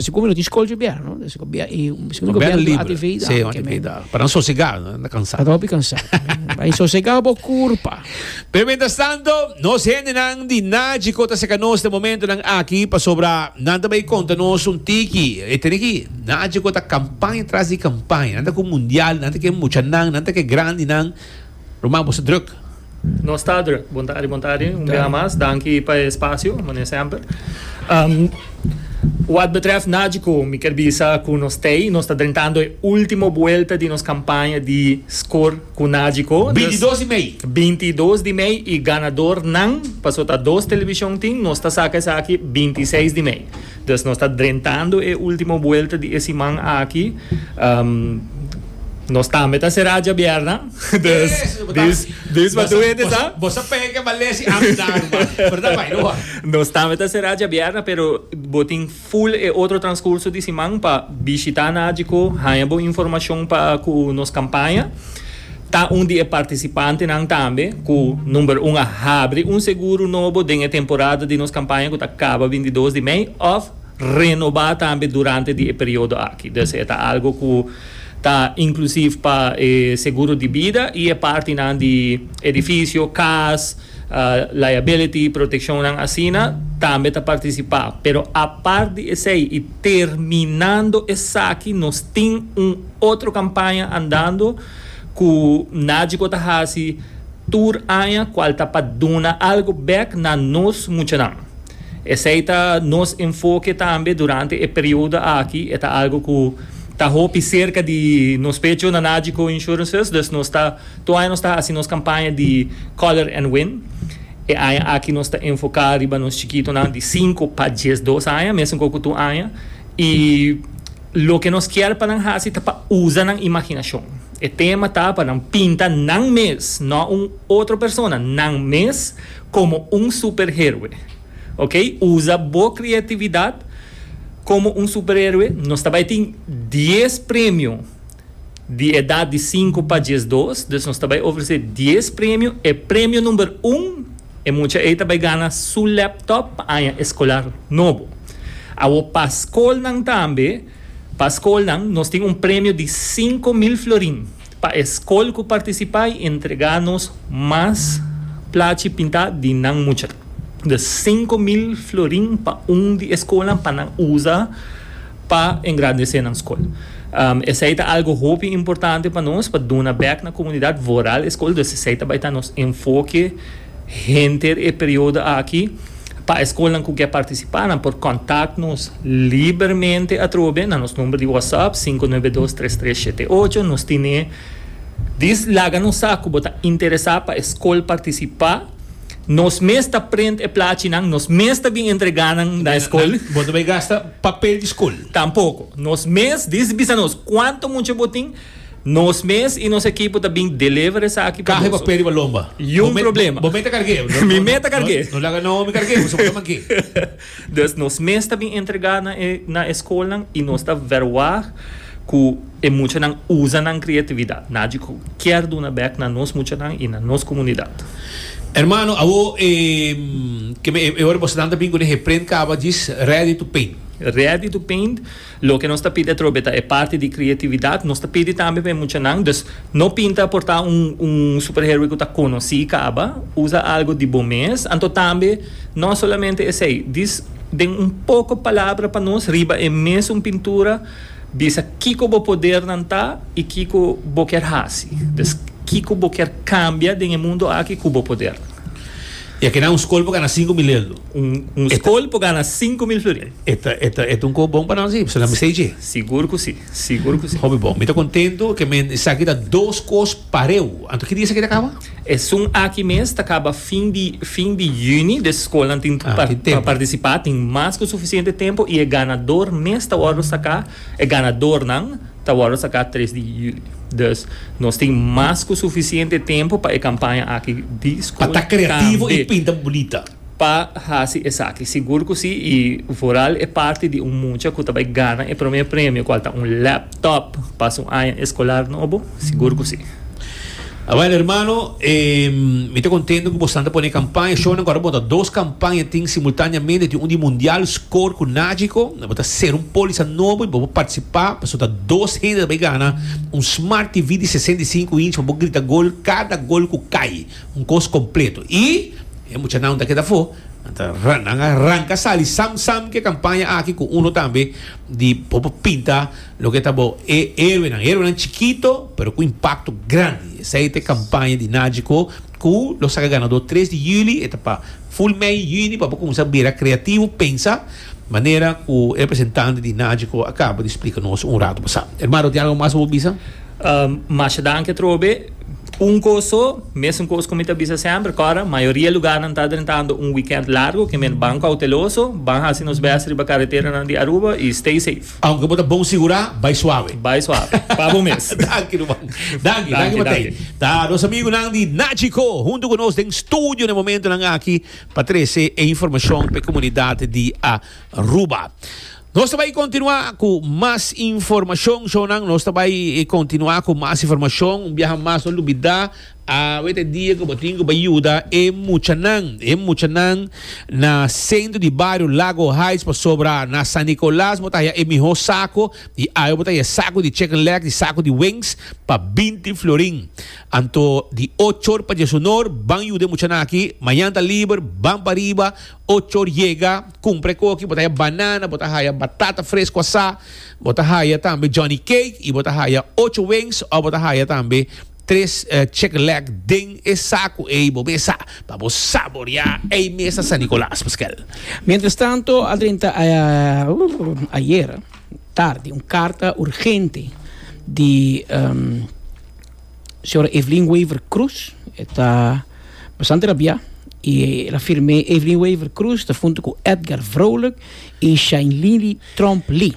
Esaki como lo tin school bia, no? Esaki bia y misschien gobierno libre. Atividad. Sí, atividad. Para sosegado, no cansado. Para hopi cansado. Para sosegado bo curpa. Pero mientras tanto, nos gente nan di Naji kota seka nos de momento nan aki pasobra nan tabei conta nos un tiki. E tene ki Naji kota campaña tras di campaña. Nan ta ku mundial, nan ta ke mucha nan, nan ta ke grandi nan. Ruman bo sa druk? Nos ta druk. Bontadi bontadi un bia mas. Danki pa e spasio, mane semper. Wad betrèf Nagico mi kier bisa ku nos t'ei nos ta drentando e ultimo buelta di nos kampaña di Skor ku Nagico. Binti dos di mei. Binti dos di mei i ganadornan, paso ta dos televishon tin, nos ta saka esaki binti seis di mei. Dus nos ta drentando e ultimo buelta di e siman aki. Nos tambe ta será djabierna, dus dis dis pa tur hende sa. Bo sa pega ke balesi amda ruba, pero ta bai no hora. Nos tambe ta será djabierna pero bo tin full e otro transcurso di siman pa bishita na Agiko, haña bo informacion pa ku nos campaña. Ta un di e participantenan tambe cu number un a habri un seguro nobo den e temporada di nos campaña cu ta caba binti dos di mei of renoba tambe durante di e periodo aki. Dus e ta algo cu ta inclusief pa e seguro di bida y e partinan di edificio, cas, liability, proteccionnan asina tambe ta participa. Pero apart di esey y terminando esaki nos tin un otro campaña andando. ku Najico ta hasi tur aña kual ta pa duna algu bek na nos muchanan. Esei ta nos enfoke tambe durante e periodo aki, e ta algu ku ta hopi serka di nos pecho na Najico Insurances, dus nos ta tur aña nos ta hasi nos kampaña di Color and Win. E aña aki nos ta enfoka riba nos chikitonan di sinku pa diesdos aña, mesun ku tur aña, i. Loke nos kier pa nan hasi ta pa usa nan imaginashon. E tema ta pa nan pinta nan mes, no un otro persona, nan mes komo un superheroe. Ok, usa bo kreatividat komo un superheroe. Nos ta bai tin dies premio di edat di sinku pa diesdos, dus nos ta bai ofresé dies premio, e premio number un, e mucha ei ta bai gana su laptop pa aña eskolar nobo. Awor pa skolnan tambe, pa skolnan nos tin un premio di sinku mil florin pa e skol ku partisipá i entregá nos mas plachi pintá di nan mucha. Dus sinku mil florin pa un di e skolnan pa nan usa. pa engrandece nan scol. Esey ta algo hopi importante pa nos pa duna bek na comunidad vooral e scol, dus esey ta bay ta nos enfoke henter e periodo aki. Pa e scolnan cu ke participa nan por contact nos libermente atrobe na nos number di WhatsApp sinku nuebe dos tres tres shete ocho. Nos tine dis laga nos sa cu bo ta interesa pa e scol participa. Nos mes ta prent e plachinan, nos mes ta bin entrega nan na e skol. Bo ta bay gasta papel di skol. Tampoko. Nos mes diz bisa nos cuanto mucha bo tin, nos mes y nos ekipo ta bin deliver esaki pa boso. Caha e papel riba lomba. Yu un problema. Bo me ta cargue. Mi me ta cargue. No laga no mi cargue, bo ta manke. Dus nos mes ta bin entregá na e na e skolnan i nos ta vèrwá ku e muchanan usa nan kreatividat. Nagico kier duna bèk na nos muchanan i na nos komunidat. Hermano, awo e ke me e ora boso tanta bin ku den he prent kaba djis Ready to Paint. Ready to Paint Loke nos ta pidi atrobe ta e parti di creatividad. Nos ta pidi tambe pa e muchanan, dus no pinta por ta un un superheroe cu ta conoci caba. Usa algo di bo mes. Anto tambe no solamente esey, dis den un poco palabra pa nos riba e mesun pintura bisa kico bo podernan ta y kico bo kier haci. Dus kico bo kier cambia den e mundo aki cu bo podernan. E keda un skol pa gana sinku mil eldo. Un skol pa gana sinku mil florin. E ta e ta e ta un kos bon pa nan si, pasobra nan bisei dje. Sigur ku si, sigur ku si. Hopi bon. Mi ta kontentu ke men esaki ta dos kos pareu. Anto ki dia esaki ta kaba? Esun aki mes ta kaba fin di fin di yüni, dus skolnan tin pa pa partisipá, tin mas ku sufisiente tempu i e ganador mes ta wòrdu saká, e ganadornan. Ta wordo saká tres di juli. Dus nos tin mas ku sufisiente tempu pa e kampaña aki di skol tambe. Pa ta kreativo i pinta bunita. Pa hasi esaki. Sigur ku si i vooral e parti di un mucha ku ta bai gana e promé premio, kual ta un laptop pa su aña eskolar nobo, sigur ku si. Awel hermano, e mi ta contento cu bosnan ta pone e campaña show nan cu ora bo ta dos campaña tin simultaneamente tin un di mundial score cu nagico nan bo ta ser un polisa nobo y bo por participa pasobra ta dos hende ta bay gana un smart TV di sesenta i sinku inch pa bo grita gol cada gol cu cay un cos completo y e muchanan nan ta keda afo nan ta nan a ranca sali sam sam cu e campaña aki cu uno tambe di bo por pinta Loke ta bo e héroenan? Héroenan chikito, pero ku impakto grandi. Esei ta e kampaña di Nagico ku lo saka ganadó tres di yüli. E ta pa ful mei yüni pa bo kuminsá bira kreativo, pensa, manera ku e representante di Nagico a kaba di splika nos un ratu pasá. Hermano, tin algu mas ku bo bisa? Masha danki atrobe. Un kos so, mesun kos ku mi ta bisa semper, ku ora mayoria lugarnan ta drentando un wikènt largu, kende banko hauteloso, ban hasi nos bèst riba kareteranan di Aruba i stay sef. Aunke bo ta bon sigurá, bai suave. Bai suave. Pa bo mes. Danki ruman. Danki, danki Matei. Ta nos amigunan di Nagico huntu ku nos den studio na e momentunan aki pa trese e informashon pa e komunidat di Aruba. Nos ta bai kontinuá ku mas informashon, shownan. Nos ta bai kontinuá ku mas informashon. Un biaha mas no lubidá. Awe ta e dia ku bo tin ku bai yuda e muchanan. E muchanan na sentro di bario Lago Heights pasobra na San Nicolas bo ta haya e mihó saku i awe bo ta haya saku di chicken legs i saku di wings pa binti florin. Anto di ocho or pa dies un or ban yuda e muchanan aki. Mañan ta liber, ban pa riba ocho or yega kumpra e koki. Bo ta haya banana, bo ta haya batata fresku asá, bo ta haya tambe Johnny Cake i bo ta haya ocho wings òf bo ta haya tambe Tres Chick Leg den e saku ey bo mesa pa bo saborea ey mesa San Nicolas Pascual. Mientras tanto adrenta ayer tardi un carta urgente di Sra. Evelyn Wever Croes e ta bastante rabia y el a firme Evelyn Wever Croes ta hunto cu Edgar Vrolijk y Shainlini Tromp Lee.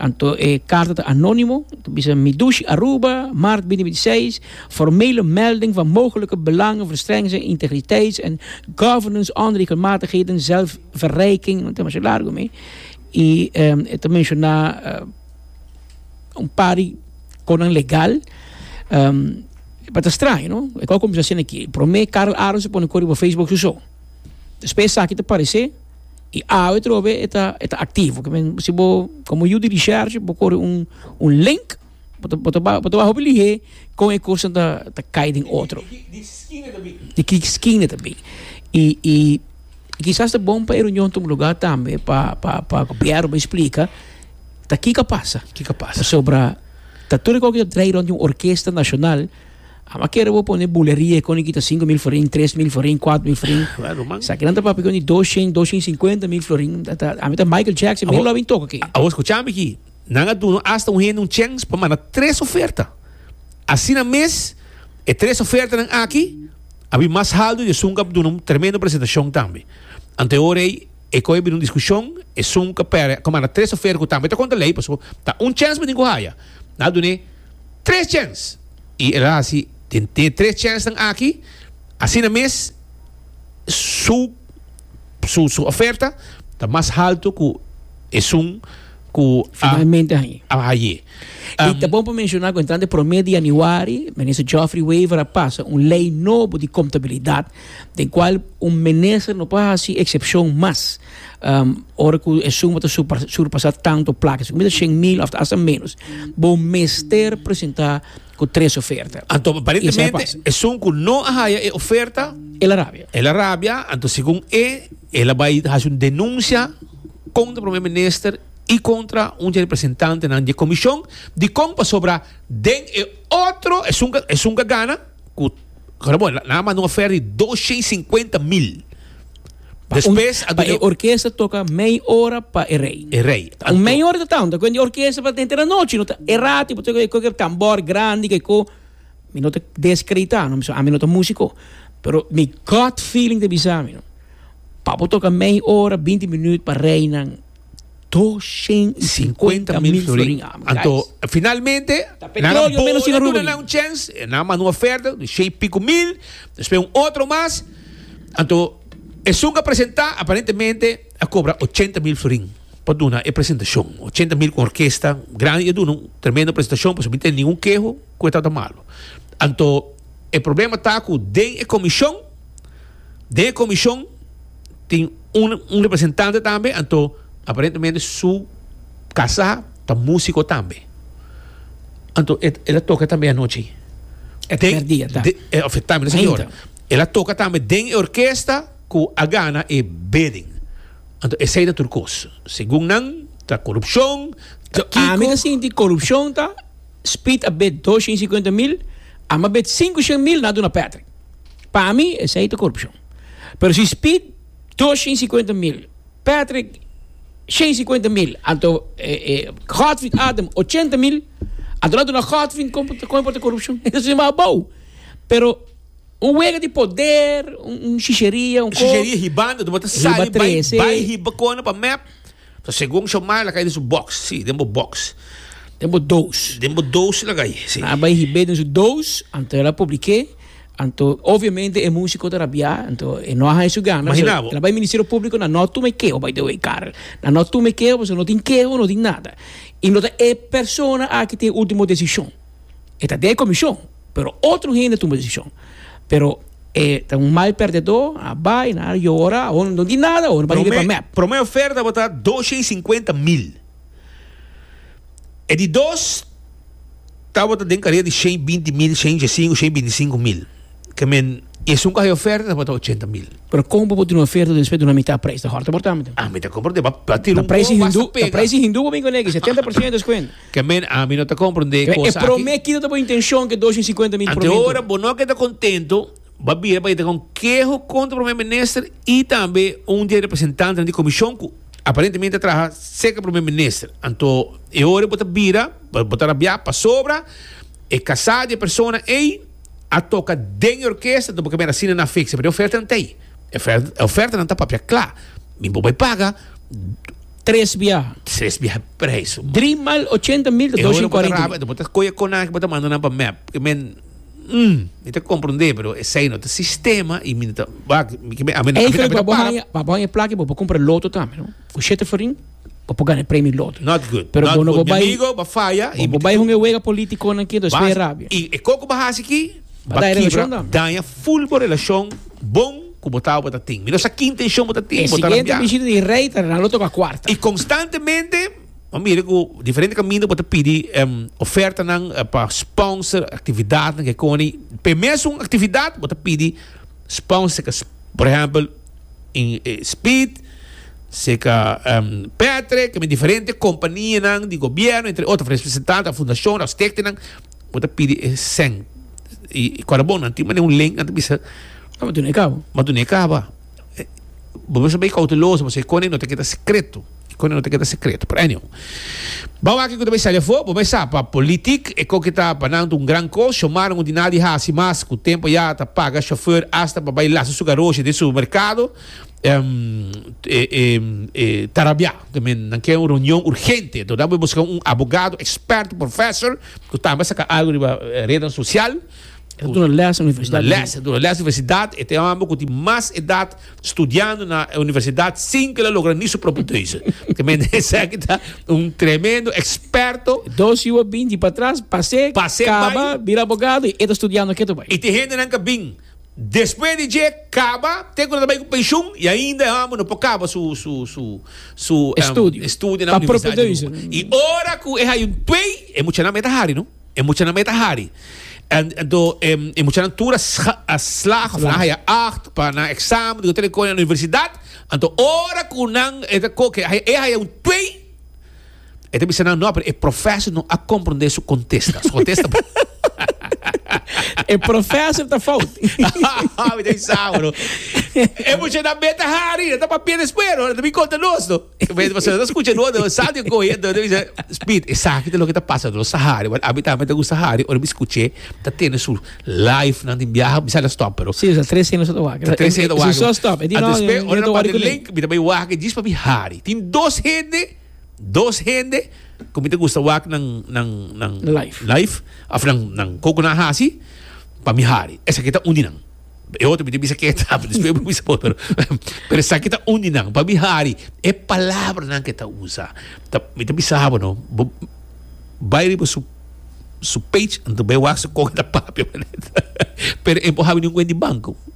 Anto e karta ta anónimo, ta bisa Mi Dushi Aruba, Maart bini binti seis, formele melding van mogelijke belangenverstrengens en integriteits en governance onder die regelmatigheden, zelfverrijking, no tema su largo mi, i e ta menshoná un par di konan legal, e por ta straño no, e ku a kuminsá hasiendo aki, promé Karl Aron su pone kor riba Facebook su so, despues esaki ta paresé. y awe trobe e ta e ta activo si bo como yu di research bo kore un un link bo ta bo ta bo ta hopi lihe con e cos nan ta ta cay den otro di ki esquina ta bay y y kisas ta bon pa e reunion tuma lugar tambe pa pa pa gobierno bo explica ta kiko a pasa pasobra ta tur e cosa ta draai rond di un orkesta nacional. Amo a kere bo pone buleria con e kita cinco mil florin, tres mil florin, cuatro mil florin. Claro, man. Sa kinan ta papia con e doshen, doshen cincuenta mil florin. Ta, ta, ami ta Michael Jackson, mira lo bin toca aquí. Abo escucha mi aquí. Nan a duno hasta un hende un chance pa manda tres oferta. Asina mes, e tres ofertanan aki a bin mas haldo y e sunca a duna un tremendo presentacion tambe. Ante ora ey, e coi a bin un discusion, e sunca pera a manda tres oferta cu tambe ta contra ley, pasobra ta un chance pa tin cu haya. Nan a duna e tres chance. Y el a haci den e tres chelsnan aki, asina mes su su su oferta ta mas halto cu esun cu a Finalmente a haye. a haye. Y Um, ta bon pa menciona cu entrando e prome di januari, Minister Geoffrey Wever a pasa un ley nobo di contabilidad den cual un minister no por haci excepcion mas ora cu e suma ta surpasa tanto placa, si cu mira shen mil of hasta menos, bo mester presenta cu tres oferta. Anto aparentemente esun cu no a haya e oferta, El a rabia. el a rabia, anto segun e, el a bay haci un denuncia contra Premier Minister y contra un dje representantenan dje comision, dicon pasobra den e otro, esun, esun ka gana, ku Ramon, nan a manda un oferta di doscientos y cincuenta mil. Despues a Pa e orkesta toka mei ora pa e rei. E rei. Un mei ora ta tau, ta kuenti orkesta pa den tera nochi, no ta e rati pa toka koke tambor grandi ke ko. Mi no ta deskreditá no, ami no ta músiko, pero mi gut feeling ta bisámi no, pa bo toka mei ora, binti minüt pa reinan. Doshen i sinkuenta mil florin. Anto, finalmente, nan a bou e duna nan un chèns, e nan a manda un ofèrta di shei piku mil, despues un otro mas. Anto, esun ku a presentá, aparentemente a kobra ochenta mil florin pa duna e presentashon. Ochenta mil ku un orkesta grandi ta duna un tremendo presentashon, pasobra mi tene ningun keho ku e tabata malu. Anto, e problema ta ku den e komishon, den e komishon. tin un un representante tambe anto aparentemente su kasá ta músiko tambe anto e el a toka tambe anochi E den primer dia ta de e of e tambe señor Ainda. el a toka tambe den e orkesta ku a gana e bidding anto esei ta tur kos segun nan ta korupshon ta So ami kiko ta sinti korupshon ta Speed a bid dos shen y cincuenta mil, Ama bid sinku shen mil na duna Patrick. Pa mi esei ta korupshon. Pero si Speed dos shen sikuenta mil, Patrick shen sikuenta mil, anto Godfrid Adam ochenta mil, anto lo a duna Godfrid kon kon e por ta korupshon? E ta sinti mas abou. Pero un wega di poder, un shisheria, un ko. Un shisheria hibando ta bata sali bai bai hiba kona pa mep. Ta segun Shomai lagai den su box, si, den bo box. Den bo doos. Den bo doos lagai, si. A bai hib'é den su doos, anto el a publik'é, anto obviamente e músiko ta rabiá, anto e no a haña su gana, so Imaginabo. el a bai Ministerio Públiko na no tuma e keho, by the way, Karel, na no tuma e keho pasobra no tin keho, no tin nada, i no ta e persona aki tin e último desishon. e ta den e komishon, pero otro hende tumba desishon, pero e ta un mal pèrdedó, a bai na área, yora, awor no di nada, awor no bai riba e mèp. Promé oferta bo ta doshe i sinkuenta mil, e di dos ta bo ta den karier di shen i binti mil, shen i djesinku, shen i binti sinku mil, ke men i esun ku haya oferta ta bo ta ochenta mil. Pero kon bo por duna oferta despues duna mitá preis, ta hòrta mortá, mante? Ah, mi ta kompra, ta preis di hindu, ta preis di hindu bo bin ku negi, setenta por siento deskuento. Ke men ami no ta komprendé e kosa aki. E promé kit no ta bo intenshon ke dos i sinkuenta mil por mintu. Ante ora bo no ke ta kontentu, bo a bira pa yeta ku un keho kontra promé minister i tambe un di e representantenan di komishon ku aparentemente a traha serka di promé minister. Anto e ora bo ta bira, bo ta rabiá pasobra e kasá di e persona ei a toka den e orkesta, anto bo ke mira asina nan a fiksa. Pero e ofertanan ta ei. E ofertanan ta papia kla. Mi bo bai paga. Tres biaha. Tres biaha e prijs su man. Drie maal ochenta mil ta E dos hora bo ta cuarenta raba, mil. ta bo ta coge conaj bo ta manda nan pa map. Porque men, mm, mi ta comprende, pero esey no ta sistema y mi no ta, wak, mi kibe, ami, Ey, ami, Felipe, ami ta bo para. haya, bo haya e plaki bo pa compra loto tambe, no? Cu shete farin, bo por gana e premio loto. Not good, Pero not bo no good. bo Mi bay, amigo, bo faya y bo mi bo ta bay con e wega politiconan aquí, entonces Bas, spera rabia. y e coco bo hasi aquí, Ba daña relashon dan. Daña full bo relashon bon ku bo tao bo ta tin. Mi no sa ki intenshon bo ta tin. E siguiente bishita di rei ta Ronaldo toka kuarta. I konstantemente bo mira ku diferente kaminda bo ta pidi ofertanan pa sponsor aktividatnan ke koni. P'e mesun aktividat bo ta pidi sponsor seka por ehèmpel Speed seka Petre, ke mi diferente kompanianan di gobièrnu entre otro, representante, fundashon, stèktenan. Bo ta pidi e sèn i kòrabonnan tin manera un len nan ta bisa, Bo matu n'e kaba. matu n'e kaba. Bo mester bai kouteloso pasobra e kòne no ta keda sekreto, e kòne no ta keda sekreto. Pero anyway, bou aki ku ta bai sali afó, bo bai sa pa politik e kon ke ta pa nan un gran kos, Xiomara no tin nada di hasi mas ku tempu a yaga ta paga shofèr asta pa bai lasa su garosha den supermerkado, e tarabiá. También nan kere un reunion urgente, entonces nan bo busca un abogado experto, professor, cu tambe a saca algo riba redes social. E ta duna les na universidad. Na les, e ta duna les na universidad. E ta e homber cu tin mas edad studiando na universidad sin cu el a logra ni su propio teuze. También esaki ta un tremendo experto. Dos yu a bin di patras, pase, Pase, bay. caba, bira abogado y e ta studiando ketu bay. Y tin hendenan cu a bin. Despues di dje kaba te ku nan ta bai ku penshun i ainda e hòmber no por kaba su su estudio na universidad di Aruba. I ora ku e haño twe e muchanan mei ta hari no. E muchanan mei ta hari. Anto e muchanan tur a slaag òf nan haya acht pa nan eksamen di hotel i kosnan na universidad. Anto ora ku nan e ta koke e haño twe. E ta bisa nan, no, pero e professor no a comprende su contesta. Su contesta bon. E professor ta fout. Mi ta bisa awa, no. E mucha na beta hari, na ta papia después, no. Na ta bin conta nos, no. Beta pa sona ta scucha no, no. Sal di cohe, no. Ta bisa, Speed, esaki ta loke ta pasa, no. Sa hari, but ami tambe ta gusta hari. Ora mi scuche, ta tene su life nan den biaha, mi sa ta stop, pero. Si, sa tres heno sa ta wak. Ta tres heno ta wak. Si so stop, e di no, no ta wak. Ora nan parte link, mi ta bay wak, jis pa mi hari. Tin dos hende. Dos hende ku mi ta gusta wak nan nan nan Life. life of nan nan koko nan hasi pa mi hari. Esaki ta un di nan. E otro mi tin bisa ke ta, despues mi por bisa bo pero pero esaki ta un di nan. Pa mi hari e palabranan ke ta usa ta mi ta bisa bo no bo bai riba su su page anto bai wak su kon e ta papia pero e bo habi ningun kuent di banko.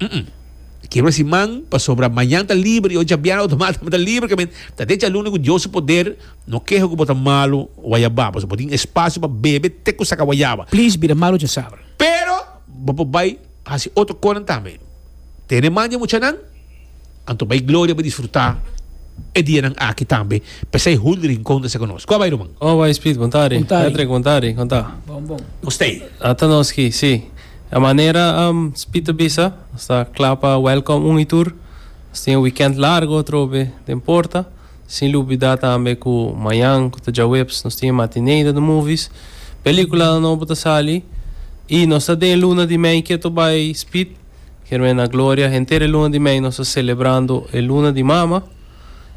Umm. Kibra si man, pasobra mañan ta liber i oca bianan otomat tambe ta liber. Ke men ta decha luna ku Dios su poder. No keha ku bo ta malu wayabá, pasobra bo tin espasio pa bebe te ku saka wayaba. Please bira malu dje sabra. Pero bo por bai hasi otro konan tambe. Tene man dje muchanan. Anto bay gloria pa disfruta e dianan aki tambe pesey hun rincon ta ser con nos. Kua bay ruman? Oh bay Speed, bon tardi. Bon tardi. Patrick, bon tardi. Con ta? Bon bon. Nos tey. Ata nos ki, si. E manera Speed ta bisa, nos ta cla pa welcom un y tur. Nos tin e weekend largo atrobe den porta. Sin lubida tambe cu mayan cu ta djaweps nos tin e matinee den de movies. Peliculanan nobo ta sali y nos ta den e luna di mey. Ke to bay Speed? Hermana Gloria, henter e luna di mei nos ta celebrando e luna di mama.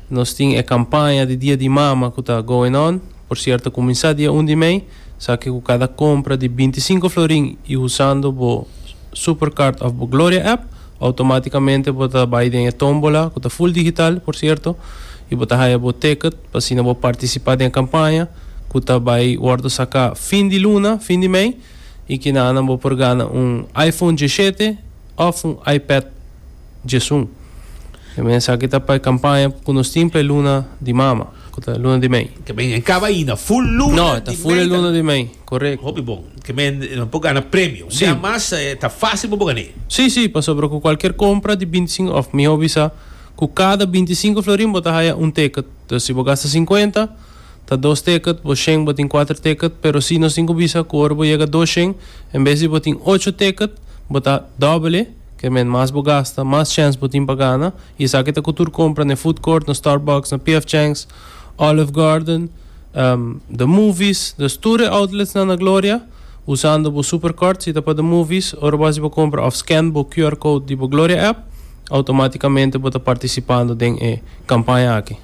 Nos tin e campaña di dia di mama cu ta going on. Por cierto ta cuminsa dia un di mei. Sa que cu cada compra di binti cinco florin y usando bo Supercard of bo Gloria app, automaticamente bo ta bay den e tombola cu ta full digital por cierto y bo ta haya bo ticket pa asina bo participa den e campaña cu ta bay wordo saca fin di luna, fin di mei. y kinanan bo por gana un iPhone diesete of un iPad diesun. E mensaki ta pa e campaña cu nos tin pa e luna di mama, cu ta luna di mei. Ke men e caba ayina, full luna di mei. No, e ta full e luna di mei, correcto. Hopi bon, ke men lo por gana premio. Si. Dia mas ta facil pa bo gana e. Si, si, pasobra cu cualkier compra di binti cinco, of miho bisa, cu cada binti cinco florin bo ta haya un ticket. Entonces si bo gasta cincuenta. ta dos teket, bo shen bo tin kuater teket, pero si nos tin ku bisa ku ora bo yega dos shen, en bes di bo tin ocho teket, bo ta dòbele, ke men mas bo gasta, mas chèns bo tin pa gana, i esaki ta ku tur kompra na e food court, na Starbucks, na PF Chang's, Olive Garden, The Movies, dus tur e outletsnan na Gloria, usando bo Super Card, si ta pa The Movies, ora bo hasi bo kompra òf scan bo QR code di bo Gloria app, outomatikamente bo ta partisipando den e kampaña aki.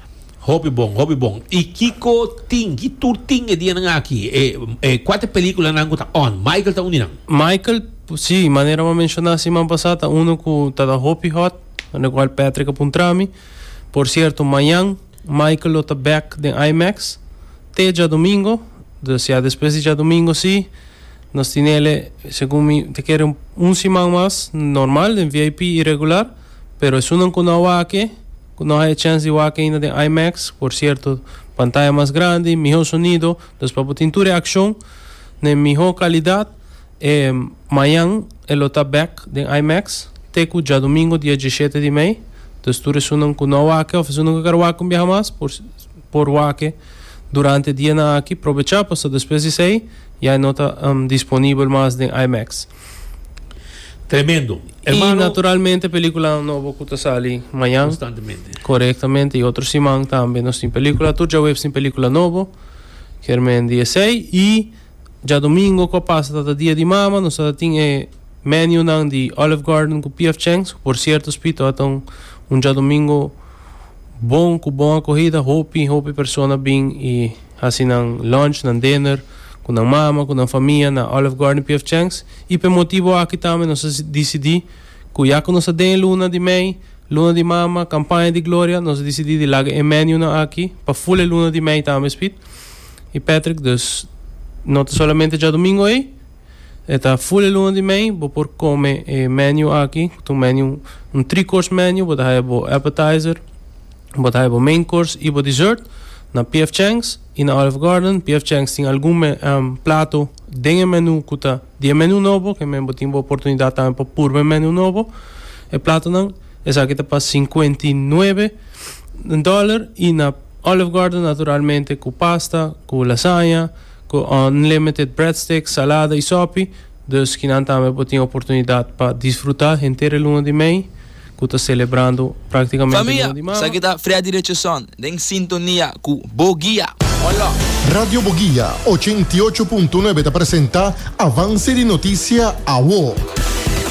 Hopi bon, hopi bon. Y kico tin, ki tur tin e dianan aki? E, e cuater peliculanan cu ta on, Michael ta uninan? Michael, si, manera bo a menciona siman pasa, ta uno cu ta ta hopi hot, na cual Patrick a puntra mi. Por cierto, mañan Michael lo ta back den IMAX te djadomingo, dus ya despues di djadomingo si, nos tin ele, segun mi, ta kere un, un siman mas, normal, den VIP y regular, pero esunnan cu no a wak e, Cu nos a e chance di wak ainda den IMAX, por cierto, pantaya mas grandi, miho sonido, dus pa bo tin tur e accion n'e miho calidad. E mayan e lo ta bek den IMAX, te cu djadomingo dia diesshete di mei, dus tur esunnan cu no a wak of esunnan cu a ker wak un biaha mas, por por wak durante e dianan aki, probecha, pasobra despues di esey ya e no ta disponibel mas den IMAX. Tremendo. Hermano, y naturalmente película nobo cu ta sali mañana. Constantemente. Correctamente. Y otro siman también nos tin película. Tur ya webs tin película nobo. Kermen di esei. Y ya domingo cu pasa tata dia di mama. Nos tata tin e menu nan di Olive Garden cu P.F. Chang's. Cu por cierto Spito ata un un djadomingo bon cu bon acogida. Hopi hopi persona bin y. Hasi nan lunch, nan dinner, cu nan mama, cu nan famia na Olive Garden PF Chang's y p'e motibo aki tambe nos a dicidi cu ya cu nos ta den e luna di mei, luna di mama, campaña di gloria, nos a dicidi di laga e menunan aki pa full e luna di mei tambe spit y Patrick. Dus no ta solamente djadomingo ey, e ta full e luna di mei, bo por come e menu aki cu ta un menu, un three course menu, bo ta haya bo appetizer, Bo ta haña bo main course i bo dessert na PF Chang's i na Olive Garden. PF Chang's tin algun me plato den e menu ku ta di e menu nobo ke men bo tin bo oportunidat tambe pa purba e menu nobo. E platonan esaki ta pa sinkuenta i nuebe dòler i na Olive Garden naturalmente ku pasta, ku lasaña, ku unlimited breadsticks, salada i sòpi. Dus kinan tambe bo tin oportunidat pa disfruta henter e luna di mei. ku ta selebrando praktikamente no di mama. Familia, esaki ta Freddy Richardson den sintonia ku Bo Guia. Hola! Radio Bo Guia ochenta i ocho punto nuebe ta presenta Avance di Noticia, Awo.